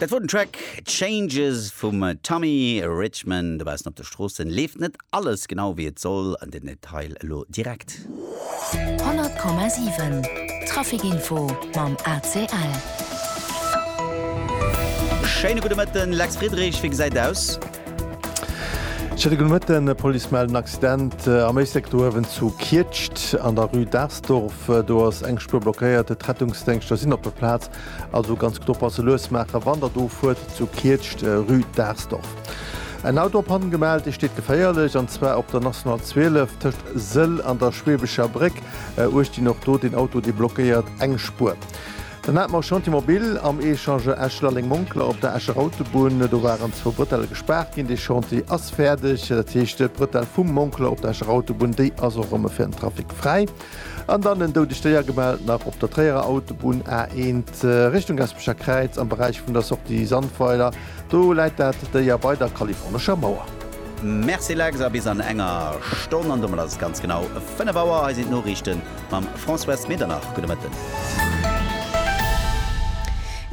Dat wor den Track Changes vum Tommy Richman. Dobaussen op de Stroossen leeft net alles genau wéi et soll. An den Detail elo direkt. 100,7 Traficinfo mam ACL. Schéine gudde Mëtten, Lex Friedrich, wéi gesäit aus? Schéine gudde Mëtten, D'Police mellt en Accident am Éislek do uewen zu Kietscht an der Rue d'Ars. Dorf do ass eng Spuer blockéiert, d'Rettungsdéngschter sinn op der Plaz, also ganz gutt oppasse, lues maachen, wann der do fuert, zu Kietscht, rue Daarsdorf. En Auto op Panne gemellt, dee steet geféierlech, an zwar op der National 12 tëscht Sëll an der Schweebescher Bréck, uecht Dinn, och do deen Auto, dee blockéiert eng Spuer. Den Atmo Chantier Mobile am Echange Esch-Lalleng-Monkler op der Escher Autobunn. Do waren zwou Brëtelle gespaart ginn. Dee Chantier ass fäerdeg. Dat heescht, d'Brëtell vum Monkler op der Escher Autobunn, déi ass och erëm fir den Trafic fräi. An dann en doudegt Déier gemellt nach op der Tréierer Autobunn, A1, Richtung Gaspecher Kräiz, am Beräich vun der Sortie Sandweiler. Do läit dat Déier bei der Kalifornescher Mauer. Merci Lex, a bis an enger Stonn. An domat ass et ganz genau 5 Auer. Hei sinn d'Noriichten. Mam Françoise Medernach, gudde Mëtten.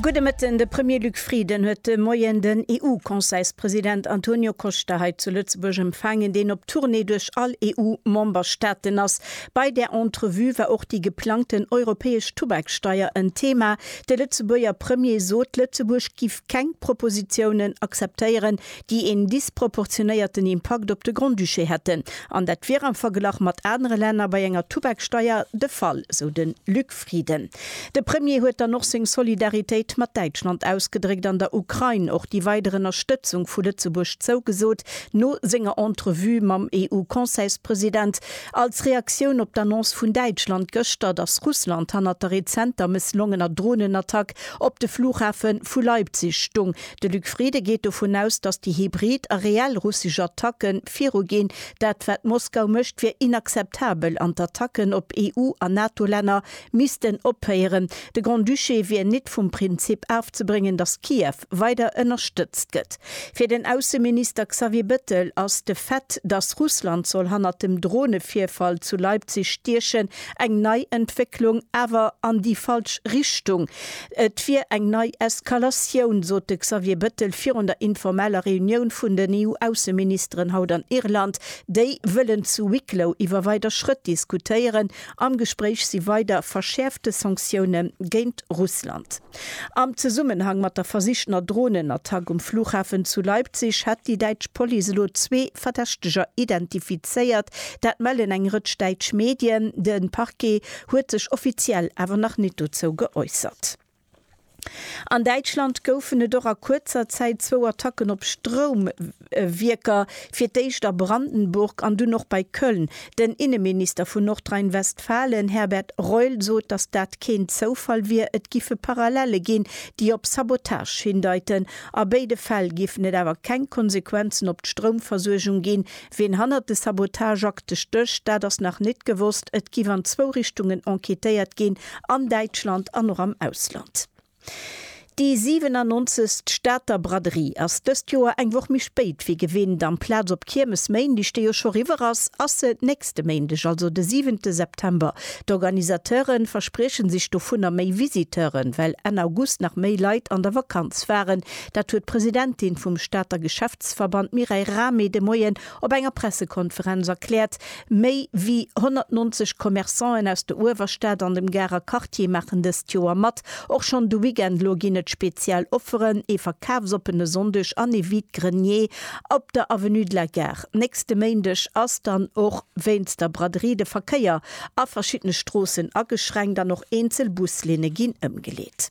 Gudde Mëtten. De Premier Luc Frieden huet de Moien den EU-Conseilspresident Antonio Costa hei zu Lëtzebuerg empfaangen, deen op Tournée duerch all EU-Memberstaaten ass. Bei där Entrevue war och déi geplangten europäesch Tubaksteier en Thema. De Lëtzebuerger Premier sot, Lëtzebuerg giff keng Propositiounen akzeptéieren, déi een disproportionéierten Impakt op de Grand-Duché hätten, an dat wier am Verglach mat anere Länner bei enger Tubaksteier de Fall, sou de Luc Frieden. De Premier huet dann och seng Solidaritéit mat Däitschland ausgedréckt an der Ukrain och déi weider Ënnerstëtzung vu Lëtzebuerg zougesot, no senger Entrevue mam EU-Conseilspresident, als Reaktioun op d'Annonce vun Däitschland gëschter, datt Russland hannert der rezenter mësslongener Dronenattack op de Flughafe vu Leipzig stung. De Luc Frieden geet dovun aus, datt déi hybrid a reell russesch Attacke viruginn. Dat wat Moskau mécht, wier inakzeptabel an d'Attacken op EU a NATO-Länner missten ophéieren. De Grand-Duché wier nit vum Prinzip afzebréngen, datt Kiew weider ënnerstëtzt gëtt. Fir den Ausseminister Xavier Bettel ass de Fait, datt Russland soll hannert dem Dronevirfall zu Leipzig stiechen, eng nei Entwécklung, awer an déi falsch Richtung. Et wier eng nei Eskalatioun, sot de Xavier Bëttel virun der informeller Reunioun vun den EU-Ausseministeren haut an Irland. Déi wëllen zu Wicklow iwwer weider Schrëtt diskutéieren. Am Gespréich si weider verschäerfte Sanktioune géint Russland. Am Zesummenhang mat der versichtener Dronenattack um Flughafen zu Leipzig hätt déi däitsch Police elo zwee Verdächteger identifizéiert. Dat mellen eng Rëtsch däitsch Medien. De Parquet huet sech offiziell awer nach nit dozou geäussert. An Däitschland goufen et och a kuerzer Zäit zwou Attacken op Stroumwierker, fir d'éischt a Brandenburg an dunn och bei Köln. Den Inneminister vun Nordrhein-Westfalen, Herbert Reul, sot, datt dat keen Zoufall wier. Et giffe Parallelle ginn, déi op Sabotage hindeiten. A béide Fäll géifen et awer keng Konsequenzen op d'Stroumversuergung ginn, Ween hannert de Sabotageakte stécht, dat ass nach nit gewosst. Et giff an zwou Richtungen enquêtéiert ginn, an Däitschland an och am Ausland. Déi 97. Stater Braderie ass dëst Joer eng Woch méi spéit wéi gewinnt. Amplaz op Kiermesméindeg, déi jo scho riwwer ass, ass se nächste Méindeg, also de 7. September. D'Organisateure versprieche sech dovunner méi Visiteuren, well Enn August nach méi Leit an der Vakanz waren, Dat huet d'Presidentin vum Stater Geschäftsverband Mireille Rahmé de Moien op enger Pressekonferenz erkläert. Méi wéi 190 Commerçanten aus der Uewerstad an dem Garer Quartier maachen dëst Joer mat. Och schonn de Weekend lo ginn et speziell Offeren, ee verkafsoppene Sonndeg an ee Vide-grenier op der Avenue de la Gare. Nächste Méindeg ass dann och wéinst der Braderie de Verkéier a verschiddene Stroossen ageschränkt an och eenzel Buslinne ginn ëmgeleet.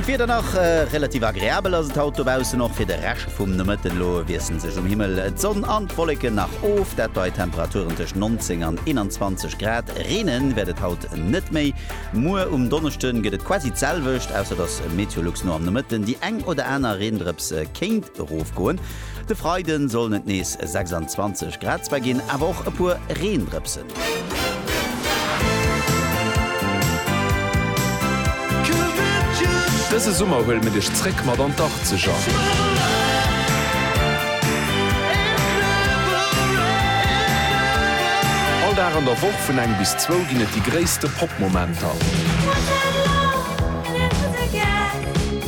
An d'Wieder nach? Relativ agreabel ass et haut dobaussen, och fir de Rescht vum Nomëtten. Elo wiesselen sech um Himmel d'Sonn an d'Wolleken nach of, dat bei Temperaturen tëscht 19 an 21 Grad. Reene wäert et haut net méi. Muer um Donneschde gëtt et quasi d'selwecht, ausser dass Meteolux no am Nomëtten déi eng oder aner Reendrëps kéint erofgoen. De Freiden sollen et nees 26 Grad zwar ginn, awer och e puer Reendrëpsen. Dëse Summer huele mir dech zréck mat an d'Arzeger. All Dag an der Woch vun eng bis zwou ginn et déi gréisste Pop-Momenter.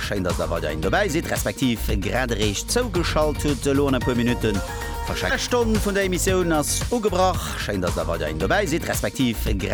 Schéin dass der weiderhin dobäi sidd, respektiv grad eréischt zougeschalt hutt. Elo an e puer Minutten verschenke. Stonn vun der Emissioun ass ugebrach. Schéin dass der weiderhin dobäi sidd, respektiv.